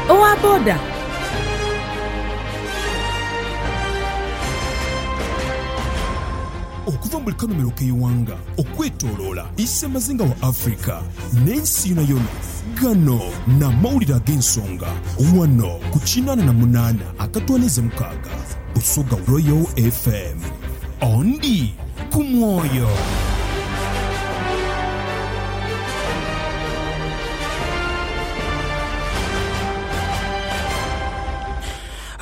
Owa boda. Okuva mu buli kanhumiro k'eighanga okwetoloola isemazinga wa Africa n'ensi yonayona, gano n'amawulire ag'ensonga wano ku kinaana na munaana akatwaniiza mukaaga Busoga Royal FM. Ondi ku mwoyo.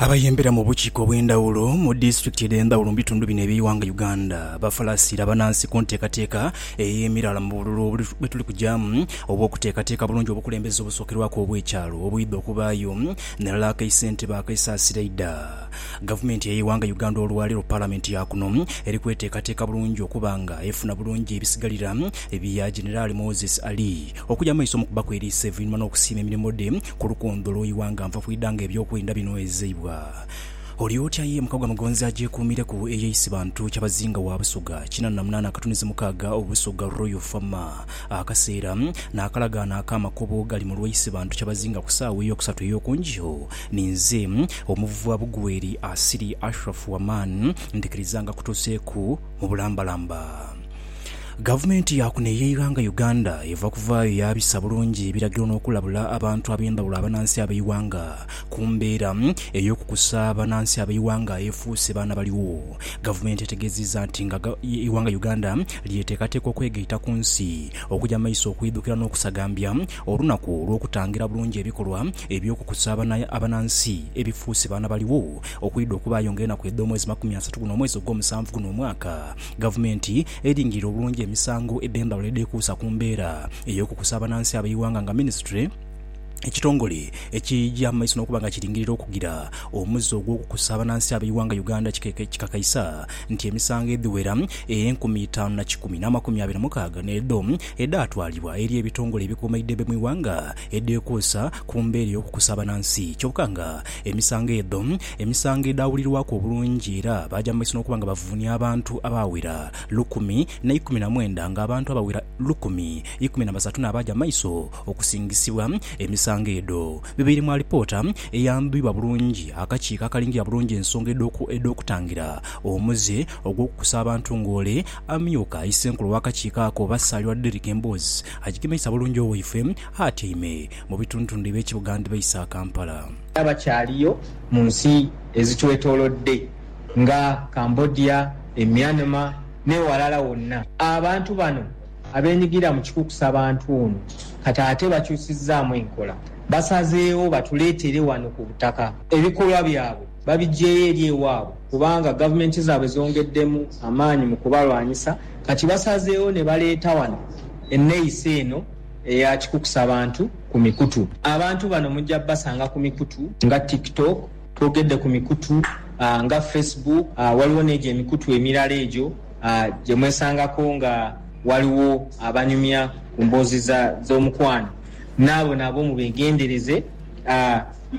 Abayembera mu bukiiko obw'endhawulo mu disitulikiti edh'endhawulo mu bitundu bino eby'eighanga Uganda bafalasiira banansi ku nteekateeka ey'emiraala mu bululu bwetuli kugyamu obw'okuteekateeka bulungi obukulembeze obusookerwaku obw'ekyalo obwidha okubaayo ni lala akaisentebe akaisaasira eidha gavumenti ey'eighanga Uganda olwaleero Palamenti ya kuno eri kweteekateeka bulungi okuba nga efuna bulungi ebisigalira bya Generali Moses Ali Okuja mumaiso mukuba kweriisa evuinhuma nokusiima emirimo dhe ku lukoondho lwo ighanga nfa kwidha nga ebyokwenda binhwezeibwa. Oli otya ye muka gwa Mugonzi agyekuumireku eye isi bantu kyabazinga wa Busoga kinana na munaana akatunizi mukaaga obu Busoga Royal Fama akaseera nakalagaano aka makobo gali mulwa isi bantu kyabazinga ku saawa eyokusatu eyokunjio ninze omuvuva bugweeri asiri Ashraf Waman ndikiriza nga kutuseeku mu bulambalamba. Gavumenti ya kuno ey'eighanga Uganda eva kuvaayo yaabisa bulungi ebiragiro n'okulabula abantu ab'endhawulo abanansi ab'eighanga ku mbeera ey'okukusa abanansi ab'eighanga aefuuse baana baligho. Gavumenti etegeziiza nti nga eighanga Uganda lyetekateeka okwegaita ku nsi okuja maiso okwidhukira n'okusagambya olunaku olw'okutangira bulungi ebikolwa eby'okukusa abanansi ebifuuse baana baligho okwidha okubaayo nga enaku edh'omwezi makumi asatu guno omwezi ogw'omusanvu guno omwaka Gavumenti eringirire obulungi emisango edh'embalala edhekuusa ku mbeera ey'okukusa abanansi ab'eighanga nga minisitule, ekitongole ekigya mu maiso n'okuba nga kiringirire okugira omuze ogw'okukusa abanansi ab'eighanga Uganda kikakaisa nti emisango edhiwera enkumi itaanu na kikumi n'amakumi abiri mukaaga n'edho edhaatwalibwa eri ebitongole ebikomaidhebe mu ighanga edhekuusa ku mbeera ey'okukusa abanansi kyoka nga emisango edho Emisango edhaawulirwaku obulungi era baaja mu maiso n'okuba nga bavuunia abantu abaawera lukumi na ikumi na mwenda nga abantu abawera lukumi ikumi na basatu n'abaaja mu maiso okusingisibwa emisango edho bebaire mu alipoota eyandhwibwa bulungi akakiiko akalingira bulungi ensonga edh'okutangira omuze ogw'okukusa abantu ng'ole Amyuka Issenkulu w'akakiiko ako oba Ssaalirwa Derrick Emboozi agigemeisa bulungi owaifwe atyaime mu bitundutundhu eby'ekibuga ndhibaisa Kampala. Era bakyaliyo mu nsi ezitwetoolodde nga Cambodia, e Myanmar n'ewalala wonna. Abantu bano abeenyigira mu kikukusa bantu ono kati ate bakyusizzaamu enkola. Basazeewo batuleetere wano ku butaka. Ebikolwa byabwe babiggyeeyo eri ewaabwe kubanga gavumenti zaabwe zongeddemu amaanyi mu kubalwanyisa. Kati basazeewo ne baleeta wano enneeyisa eno. eya kikukusa bantu ku mikutu. Abantu bano mujja basanga ku mikutu nga TikTok, twogedde ku mikutu nga Facebook, waliwo n'egyo emikutu emirala egyo gye mwesangako nga waliwo abanyumya ku mboozi dh'omukwano n'abo nabo mubegendereze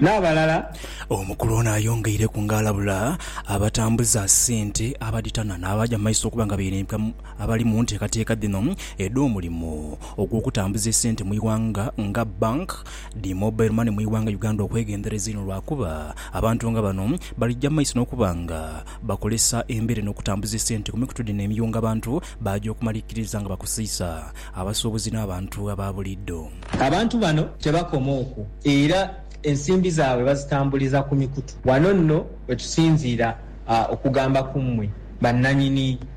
n'abalala. Omukulu ono ayongeireku nga alabula abatambuza sente abadhitana n'abaja mu maiso okuba nga beirimbika mu. Abali mu nteekateeka dhino edh'omulimu ogw'okutambuza esente mu ighanga nga bank dhi mobile money mu ighanga Uganda okwegendereza inho lwakuba abantu nga bano balija mu maiso n'okuba nga bakolesa embeera eno okutambuza esente ku mikutu dhino emiyu nga abantu baaja okumalikiriza nga bakoseiza abasuubuzi n'abantu aba buliidho. Abantu bano tebakoma okwo era ensimbi zaabwe bazitambuliza ku mikutu. Wano nno we tusinziira okugamba ku mmwe bannanyini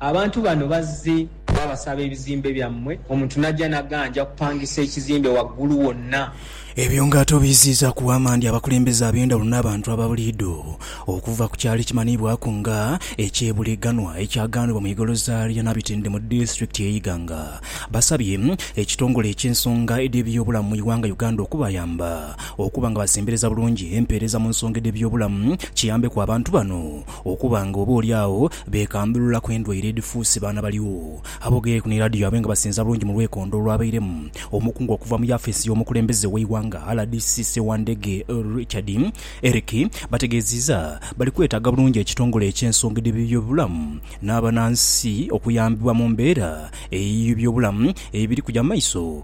Abantu bano bazze babasaba ebizimbe byammwe omuntu n'ajja n'aganja kupangisa ekizimbe waggulu wonna. Ebyo ng'ate obiiziizaaku waama ndi abakulembeze ab'endhawulo n'abantu aba buliidho okuva ku kyalo ekimanhiibwaku nga eky'e Buleganwa ekyagaanibwa mu igoloza lya Nabitende mu disitulikiti y'e Iganga basabye ekitongole eky'ensonga edh'ebyobulamu mu ighanga Uganda okubayamba okuba nga basembereza bulungi empeereza mu nsonga edh'ebyobulamu kiyambeku abantu bano Okuba nga oba oli agho beekambulula ku endwaire edhifuuse baana baligho. Aboogeire ku ni laadiyo yaabwe nga basinza bulungi mu lwekondo olwabairemu omukungu okuva mu yaafeesi y'omukulembeze w'eighanga rdc Ssewandege Richard Eric bategeeziiza bali kwetaaga bulungi ekitongole eky'ensonga edh'eby'obulamu n'abanansi okuyambibwa mu mbeera ey'eby'obulamu ebiri kuja mu maiso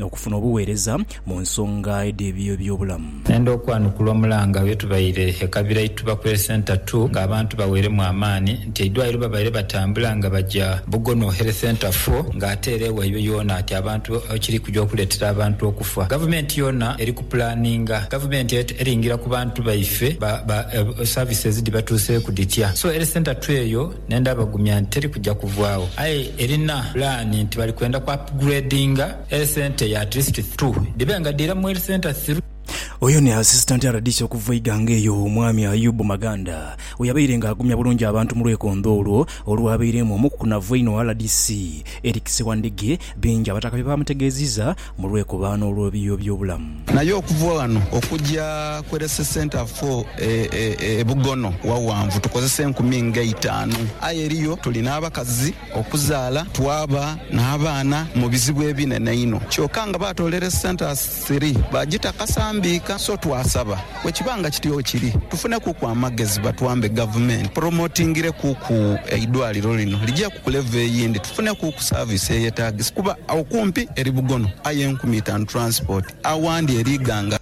Okufuna obugheereza mu nsonga edh'eby'ebyobulamu. Nenda okwanukula omulanga lwe tubaire e Kabira Ituba Prayer Centre ii nga abantu baweeremu amaani nti eidwaliro babaire batambula nga baja Bugono Health Centre iv nga ate era ewaibwe yoona ati abantu ekiri kuja okuleetera abantu okufa. Gavumenti yoona eri ku pulaninga. Gavumenti eringira ku bantu baife ba services dhibatuuseeku dhitya. So Health Centre ii eyo. Ne ndabagumya nti teri kuja kuvaagho. Aye erina pulaani nti bali kwenda ku upgradinga e centre ya district two dhibe nga dhira mu health centre through. Oyo ni Assistant RDC okuva Iganga eyo, Omwami Ayub Maganda, we yabaire nga agumya bulungi abantu mu lwekondho olwo olwabaireemu omukukunavu einho RDC Eric Sewandigi, bingi abataka bye baamutegeeziza. Mu lwekubaano olw'obiiyo by'obulamu. Naye okuva ghano okuja ku Rese Centre for e Bugono waghanvu tukozesa enkumi nga eitaanu. Aye eriyo tuli n'abakazi okuzaala twaba n'abaana mu bizibu ebinene einho. Kyoka nga baatoola Rese Centres three baagita kasambiika. So twasaba Bwekiba nga kityo kiri, tufune kuku amagezi batwambe gavumenti promotingire kuku eidwaliro lino ligye ku kulevel eyindi tufune kuku service eyetagisa kuba agho kumpi eri bugono aye enkumi itanu transport awandi eri ighanga.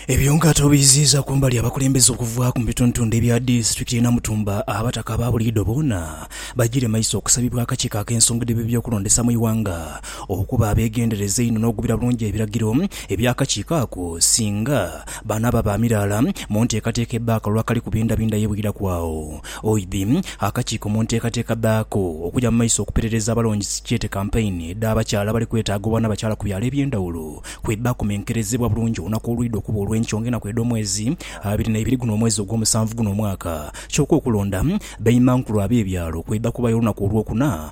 Ebyo nga tubiyiziiza kumbali abakulembeze okuva ku bituntundhe bya disitulikiti ye Namutumba abataka ababuliidho boona bajiire maiso okusabibwa akakiiko akensonga dhe byebyokulondesa mu ighanga Okuba abeegendereza einho n'ogubira bulungi ebiragiro eby'akakiiko ako, singa banaaba ba miraala mu nteekateeka ebba akalulu akali ku bindabinda ye bwiraku agho. Oidhi, akakiiko mu nteekateeka dhaako okuja mu maiso okuperereza abalonzi sikyete kampeyini dh'abakyala abali kwetaaga obwanabakyala ku byalo eby'endhawulo kwe bakomenkerezebwa bulungi olunaku olwidha okuba olw'enkyo ng'enaku edh'omwezi abiri n'eibiri guno omwezi ogw'omusanvu guno omwaka. Kyoka okulonda baimankulu ab'ebyalo kwidha kubayo olunaku olwokuna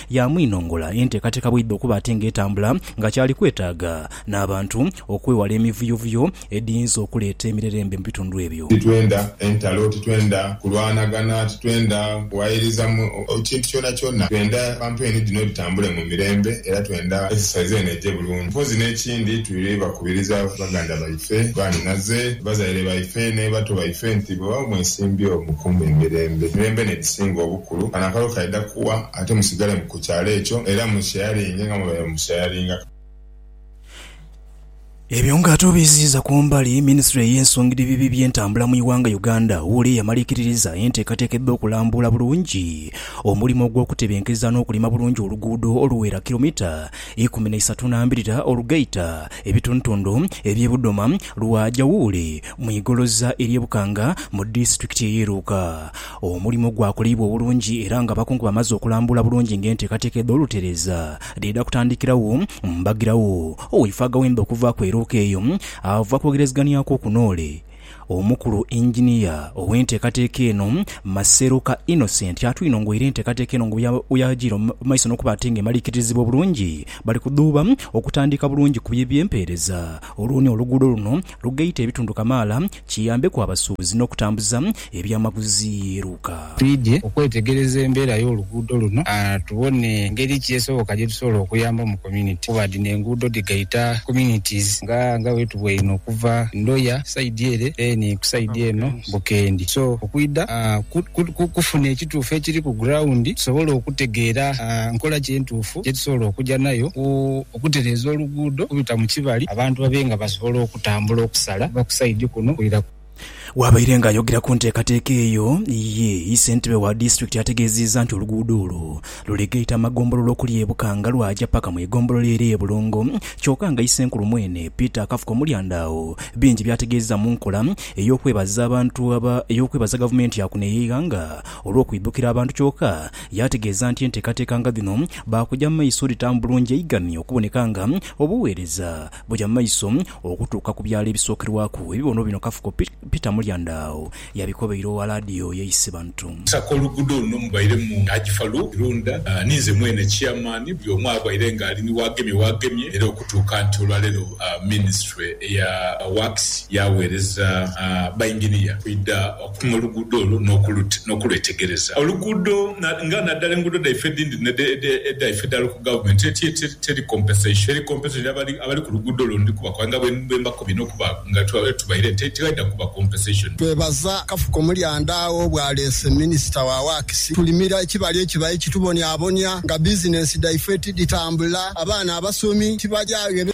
Yaamwinongola enteekateeka bw'eidha okuba ate ng'etambula nga kyali kwetaaga n'abantu okwewala emivuyovuyo edhiyinza okuleeta emirerembe mu bitundu ebyo. Titwenda entalo, titwenda kulwanagana, titwenda kuwayiriza mu kintu kyonakyona. Twenda bantu eni dhino dhitambule mu mirembe era twenda exercise eno eje bulungi. Mpozzi n'ekindi tuli bakubiriza baganda baife, banhinaze, bazaire baife ni bato baife nti bwebaba mwesimbyewo mukuume emirembe. Emirembe n'edhisinga obukulu. Kulu kano akalo kaidha kuwa ate musigale ku kyalo ekyo era mu shayaringe nga mwebaire mu shayaringa. Ebyo nga ate obiiziiza ku mbali, minisitule ey'ensongirebibi by'entambula mu ighanga Uganda, wuuli eyamala ekiririza enteekateeka edha okulambuula bulungi omulimo ogw'okutebenkeza n'okulima bulungi oluguudo oluwera kiromita ikumi naisatu nambirira olugaita ebitundutundu eby'e Budoma lwaja wuuli mu igoloza ery'e Bukanga mu disitulikiti ey'e Luuka. Omulimo gwakoleibwa obulungi era nga abakungu bamaze okulambula bulungi nga enteekateeka edh'olutereeza dheedha kutandikiragho, mbagiragho Oweifo Agawembe okuva ku Erooko eyo ava kwogerezegania kwo ku Noole. Omukulu Engineer ow'enteekateeka eno, Maseroka Innocent atwinongoire enteekateeka eno nga bweyagiire mu maiso n'okuba ate nga emaliikiririzibwa obulungi, bali kudhuuba okutandiika bulungi ku bye by'empeereza olwo ni oluguudo luno lugaite ebitundu kamaala kiyambeku abasuubuzi n'okutambuza ebyamaguzi. Luka. Twidhye okwetegereza embeera y'oluguudo luno tubone ngeri ki esoboka gye tusobola okuyamba mu community kuba dhino enguudo dhigaita communities nga nga wetubweine okuva Ndoya side ere then ku side eno Bukendi so okwidha kufuna ekituufu ekiri ku ground tusobole okutegeera nkola ki entuufu gye tusobola okuja nayo ku okutereeza oluguudo okubita mu kibali abantu babe nga basobola okutambula okusala okuva ku sayidi kuno okwira ku. Bwabaire nga ayogera ku nteekateeka eyo, ye ssentebe wa disitulikiti ategeeziizza nti oluguudo olwo luli gaita amagombolola okuli e Bukanga lwaja paka mu egombolola ere e Bulongo kyoka nga isenkulu mwene Peter Akafuko Mulyanda agho bingi byategeezza mu nkola ey'okwebaza abantu aba ey'okwebaza gavumenti yakuno ey'eighanga olw'okwidhukira abantu kyoka Yaategeeza nti enteekateeka nga dhino baakugya mu maiso dhitamu bulungi eiganhi okuboneka nga obuweereza buja mu maiso okutuuka ku byalo ebisookerwaku ebibono bino Kafuko Peter Mulyandaagho yabikobeire owa laadiyo ye Isibantu. Okusaka oluguudo luno mubairemu Haji Farouk Kirunda ni nze mwene Chairman, buli omu abaire nga ali ni waagemye waagemye era okutuuka nti olwaleero Minisitule eya Works yaaweereza Bainginiya okwidha Pima oluguudo olwo n'okulwetegereza. Oluguudo nga naddala enguudo dhaife edhindi n'edhaife edha Local Government teri compensation. Abali ku luguudo olwo ndi kubakoba nga bwe mbakobye n'okuba nga tubaire nti tighaidha kuba compensation. Twebaza Kafuko Mulyandaagho bwaleese Minisita wa Works tulimira ekibali ekibaire kitubonyabonya nga bizinensi dhaife tidhitambula, abaana abasomi tibalyagho.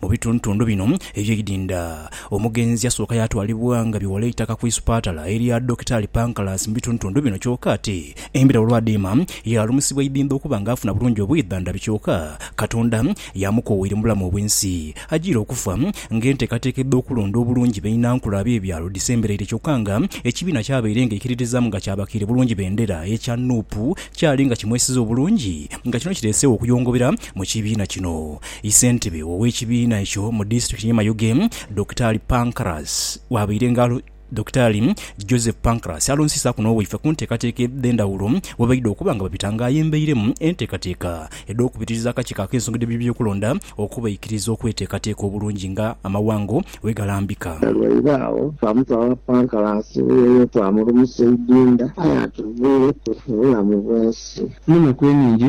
Mu bitundutundu bino eby'eidinda, omugenzi asooka yaatwalibwa nga bighola eitaka ku isupatala erya Dokitaali Pancras mu bitundutundu bino kyoka ate embira olw'adhiima yaalumusibwa eidinda okuba nga afuna bulungi obwidhandhabi kyoka Katonda yaamukoowaire mu bulamu obw'ensi ajiire okufa nga enteekateeka edh'okulonda obulungi bainankula ab'ebyalo dhisemberaire kyoka nga ekibiina ky'abaire nga ekiririzaamu nga kyabakiire bulungi bendera ekya nup kyali nga kimwesize obulungi nga kino kireeseegho okuyongobera mu kibiina kino. Isentebe w'ekibiina ekyo mu disitulikiti y'e Mayuge, Dokitaali Pancras bwabaire nga Dokitaali Joseph Pancras alonsisaaku n'obwaife ku nteekateeka edh'endhawulo bwebaidha okuba nga babita nga ayembeiremu enteekateeka edh'okubitiriza akakiiko ak'ensonga edh'ebyokulonda okubaikiriza okweteekateeka obulungi nga amawanga bwegalambika. Olwaire agho twamutwala Pancras eyo twamulumusa eidinda aye atugwireku obulamu bwensi. Mu naku enhingi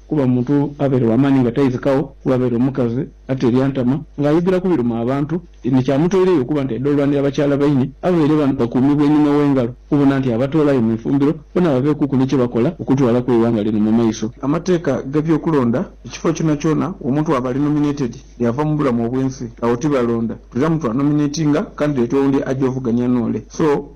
Kuba omuntu abaire wa maani nga taidhikagho, kuba abaire omukazi ate ebyantama, ng'ayigiraku biruma abantu, ni kyamutoireyo okuba nti aidha olwanira bakyala baine ababaire bakuumibwa einhuma w'engalo, okubona nti abatoolayo mu ifumbiro bona babeekuku ni kye bakola okutwalaku eighanga lino mu maiso. Amateeka g'ebyokulonda, Ekifo kyonakyona omuntu waaba ali nominated yaava mu bulamu obw'ensi, agho tibalonda. Tulamu twanominatinga kandideti owundi aje ovugania n'ole. So.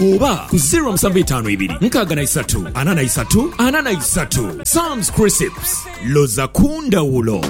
Oba ku ziro musanvu itaanu ibiri nkaaga na isatu ana na isatu ana na isatu. Sam's Crisps, loza ku ndhawulo.